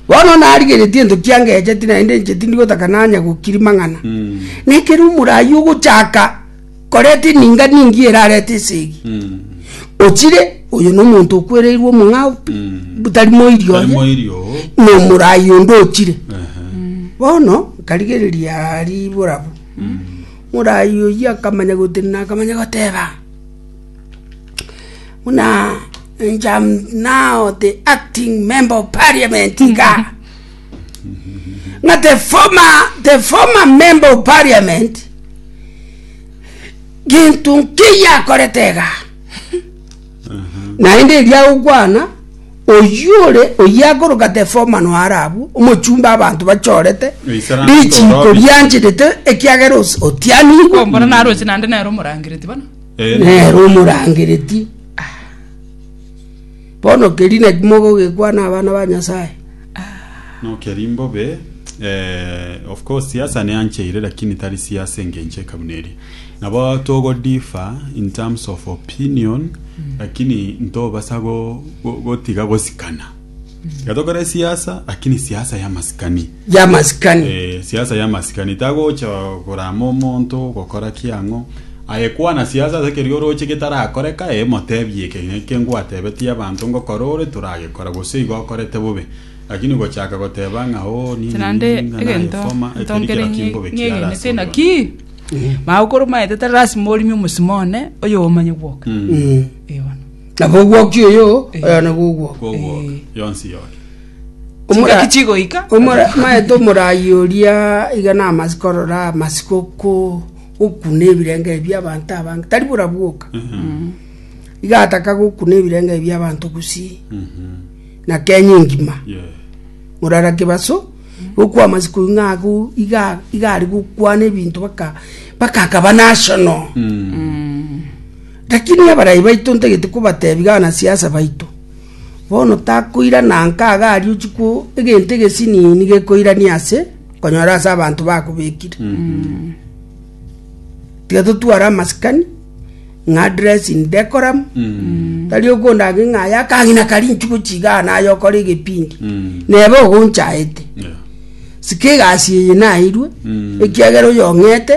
Bono narigeretie ento kiangecheti, naende inche tindi gotaka nanya gokiri mang'ana. Na ekero omoraai ogochaka koreta eninga ningiya erarete esegi, ochire, oyo nomonto okwereirwe omong'ao pi, tari moiri Tari oye, moiri oo. nomoraai onde ochire. Bono nkarigereria riibo rabu, moraai oyio akamanya gotenena akamanya goteba. buna njam now the acting member of parliament iga ng'a the former the former member of parliament gintu nkiya akorete iga naende eria agokwana oyio ore oyio akoroka the former noare abwo omochumba abanto bachorete Oisara richiko orobisi. rianchetete ekiagera os- otianigwe Ombora naroche naende nere omorangereti bono. Nere omorangereti. Bono keria naki mogogekwana abana ba Nyasae? No keria mbobe eh, of course siasa neancheire lakini tari siasa engencho eka buna eria nabo togo differ in terms of opinion lakini ntobasa go- go- gotiga gosikana tiga tokore siasa lakini siasa ya masikani y'amasikani. Eh, siasa y'amasikani tagocha korama omonto gokora kiang'o aye kwana siasa ase kerio oroche getarakoreka eh, motebie eke ng'eke ngwatebetie abanto ngokora ore toragekora gose igo okorete bobe lakini gochaka goteba ng'a oh nini Naende nini ng'a egento nayefoma ekeri ntongere kero kimbobe kiara ase ng'egenete oyono. naki mao koromaete tari lasima orime omosimo one oyo omanye gwoka Mm. Eh, bono. nabo ogwokia oyo oyo nabo ogwoka Kogwoka, yonsi yoke Omora- Chingaki chigoika. omora- maete omoraai oria iga namasi korora amasi goko- gokuna ebirengerio bia abanto abange tari bora bwoka iga ataka gokuna ebirengerio bia abanto gusii na kenya engima Yeah. morara kebaso gokwa amasi koigwa ng'a ago iga iga are gokwana ebinto baka baka akaba national lakini abarai baito ntagete kobatebia abanasiasa baito Bono takoirana nkaga aria ochikwo egento egesinini gekoirania ase konyora ase abanto bakobekire. Tiga totware amasikani ng'a dress in decorum. Tari okondage ng'a aya akagina kari inchuko chigaa naye okore egepindi. Nebe ogonchaete. Sika egasi eye nairwe ekiagera oyong'ete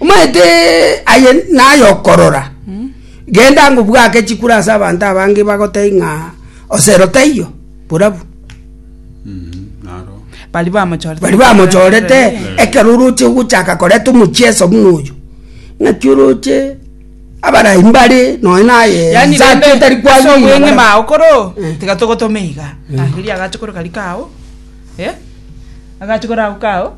Omanyete aye naye okorora, genda ngobwake chikura ase abanto abange bagotebie ng'a osero taiyo, borabu. Baria bamochorete. Baria bamochorete ekero oroche gochaka koreta omochieso buna oyo. Ng'aki oroche abarai mbare nonya naye yani rende tari kwa so bweng'e mao koro eh. tiga togotome iga mm. ah, eri agache koro kari kao eh? agache koro ako kao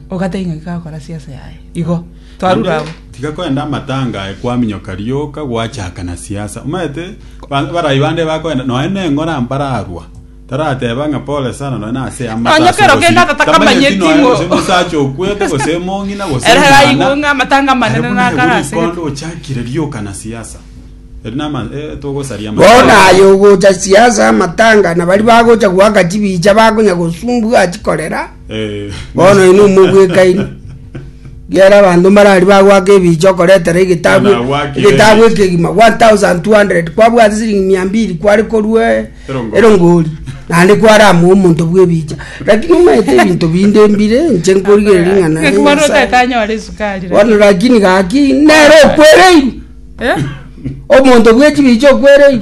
ogateba ng'a gakora siasa yaye. Igo, twarure agwo. tiga koenda amatanga aye kwaminyoka rioka gwachaka na siasa omanyete ba- barai bande bakoenda noe neng'ora mbararwa tarateba ng'a pole sana noe nase Nonya amata kero kende atatakamanyeti ng'o- gose omosacha okwete gose emong'ina gose Ere omwana. aigwe ng'a amatanga amanene Aye buna nakare egori ase kondo gete. ochakire rioka na siasa eri nama eh, togosaria amatanga. Bono aye ogocha siasa amatanga na bari bagocha goaka chibicha bakonya gosumbua chikorera Bono inwe mogwekairi, gera abanto mbarari bagwaka ebiicha okoretera egetabu Buna agwakire egetabu ebiicha. ekegima 1200 kwabwate siringi mia mbiri kware korue Erongori. erongori naende kware amoe omonto bw'ebiicha lakini omaete ebinto binde mbire inche nkorigereria ng'a nare Ekero Nyasae. otatanyore esukari. Bono lakini gaki nere okwereirwe Eh? omonto bw'echibiicha okwereirwe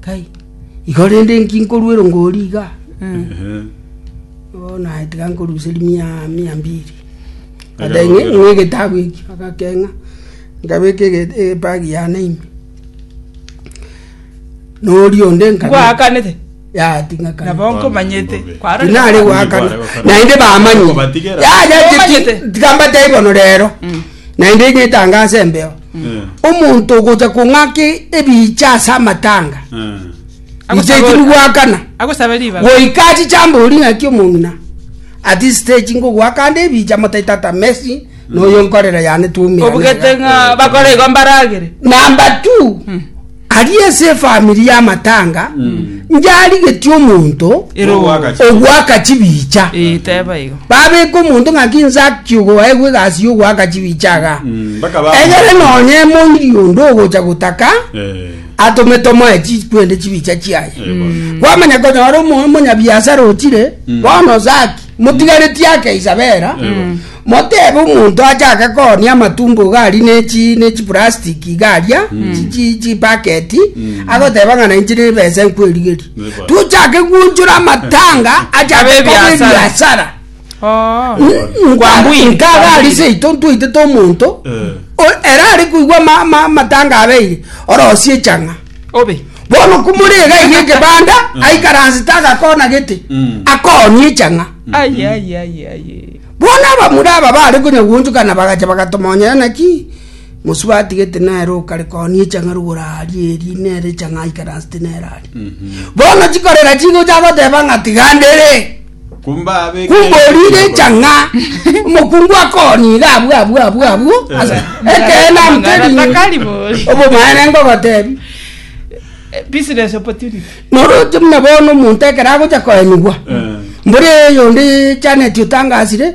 Kai, igo rende inki nkoruerwa ngori iga? Ehe. Bono naye tiga nkoruseria mia mia mbiri. Aja Adae ng'e- gokera. ng'e egetabu eki, agakeng'a, nkabeka ege- ebagi yane ime. Na oria onde nkabe- Ngwakanete. yating'akana nabo nkomanyete kwaro tinare gwakana naende bamanye Okobatigera. yaya Okomanyete. tiki- tikambatei bono rero naende ng'etanga ase embeo omonto ogocha kong'aki ebicha ase amatanga iche Agosaba- tiri gwakana agosabe ribaga goika achichamboria ng'aki omong'ina ati stage ngogwakande ebicha motaito ata messi noyo nkorera yane twomera obugete ng'a bakora igo mbaragere namba tu Aria ase efamiri y'amatanga ncharigetie omonto Ere ogwaka chi- ogwaka chibicha. Eh, teba igo. Babeka omonto ng'a ki Zaki ogoegwa egasi y'ogwaka chibicha iga. Mm, bakaba- Egere nonye emoiri onde ogocha gotaka Eh, atome tomoe chi- kwende chibicha chiaye. eh, bono. Kwamanya konyora omo- omonyabiasara ochire bono Zaki motigaretie ake Isabela, motebe omonto achake koonia amatumbo iga aria ne chi ne chiprastic iga aria chi- chi chibaketi agoteba ng'a nainche nebesa nkwerigeria Neba. tochake gwonchora amatanga achake Abe koba ebiasara. ebiasara Oh. Kwambui, nkaga kwambui. ari seito ntwaitete omonto Eh. o- era ari koigwa ma- ma- amatanga abeire orosie chang'a obe. Bono komore iga eria egebanda mm. aikaransete agakona gete mm. akooni echang'a mm-hmm. bono abamura aba bare konya gwonchokana bagacha bagatomonyera naki mosubati gete nere okare kooni echang'a rogora aria eri nere echang'a aikaransete nere aria mm-hmm. bono chikorera chigocha goteba ng'a tigandere Kumbaabeke Kumborire ekinyoro. echa ng'a omokungu akoonire abwo abwo abwo abwo ase ekeene amtere Ng'ana takari bori. obomaene ngogotebi Business opportunity. noroche buna bono omonto ekero agocha koenigwa Eh. mbore eyonde Janet otangasire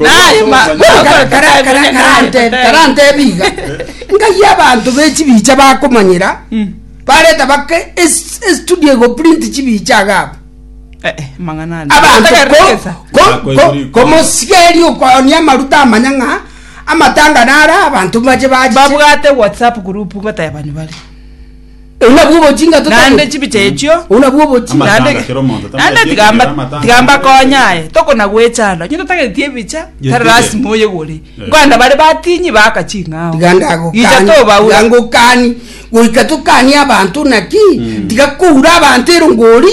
Naye ma- Kara- kara- kara- karante- karantebi iga ngai abanto be chibicha bakomanyera bareta bake es- estudio egoprint chibicha agabo Eh, eh, mang'ana ande. abanto Otaka ko- rekesa. ko- ko- komosigeri okonia amaruta amanya ng'a amatanga nara abanto bache bachiche babwate whatsapp group ngotae abanywa bare Oyio nabwo obochinga naende totabete. chibicha echio Oyio nabwo obochinga. Naende- Amatanga kera omonto naende tamwetiekire tigamba amatanga. tigamba konya aye tokona gwechanda onye totageti ebicha Gete tari gete. lasima oye gore Eh. nkwana bare batinyi baka ching'ao Tiga ndagokani. Icha tobaura. Tiga ngokani. Goika tokani abanto naki. Tiga koura abanto erongori.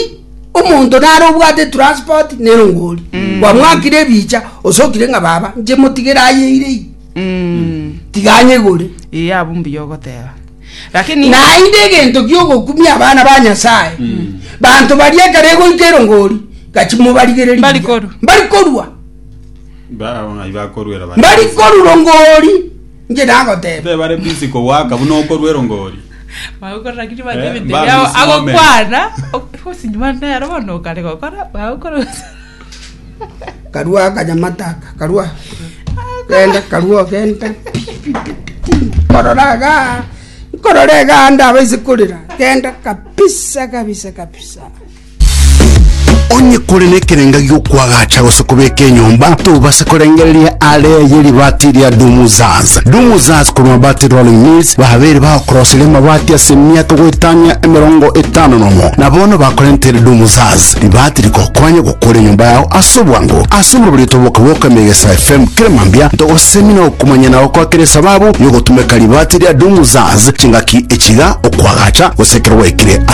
Omonto nare obwate transport nerongori. Kwamwakire ebicha osokire ng'a baba nche motigere ayeire ii. Mm. Tiga anyegore. Ee abwo mbuya ogoteba Lakini Naende egento gi'ogokumia abana ba Nyasae, banto baria ekero egoika erongori, gachi mobarigererie Mbari buya. korwa. Mbari korwa. Bao ng'ai bakoruera bare Mbari busy. korwa rongori. Inche nagoteba. Tebe bare busy kowaka buna okorua erongori. bagokora lakini bande Eh, ebinto mbami biao simwamenya. agokwana osinyi bande ero bono okare gokora bagokora karua akanyamata aka karua genda karua genda nkorora iga nkorora iga ndaba ase korera genda kabisa kabisa kabisa onye kore nekerenga giokwagacha gose kobeka enyomba tobase korengereria are ye ribati ria dumuzaz dumuzaz korwa bati rolling mills babere bagokorosire amabati ase emiaka goetania emerongo etano nomo na bono bakorentere dumuzaz Ribaati rikokwanye gokora enyomba yao ase obwango. Ase omobabarito boka bw'okoema egesae FM kera mambia, ntogosemi na okomanya na gokwa kera esababu y'ogotumeka ribaati ria Doom Zaz chingaki echi iga, okwagacha, gose ekero gwaikire ase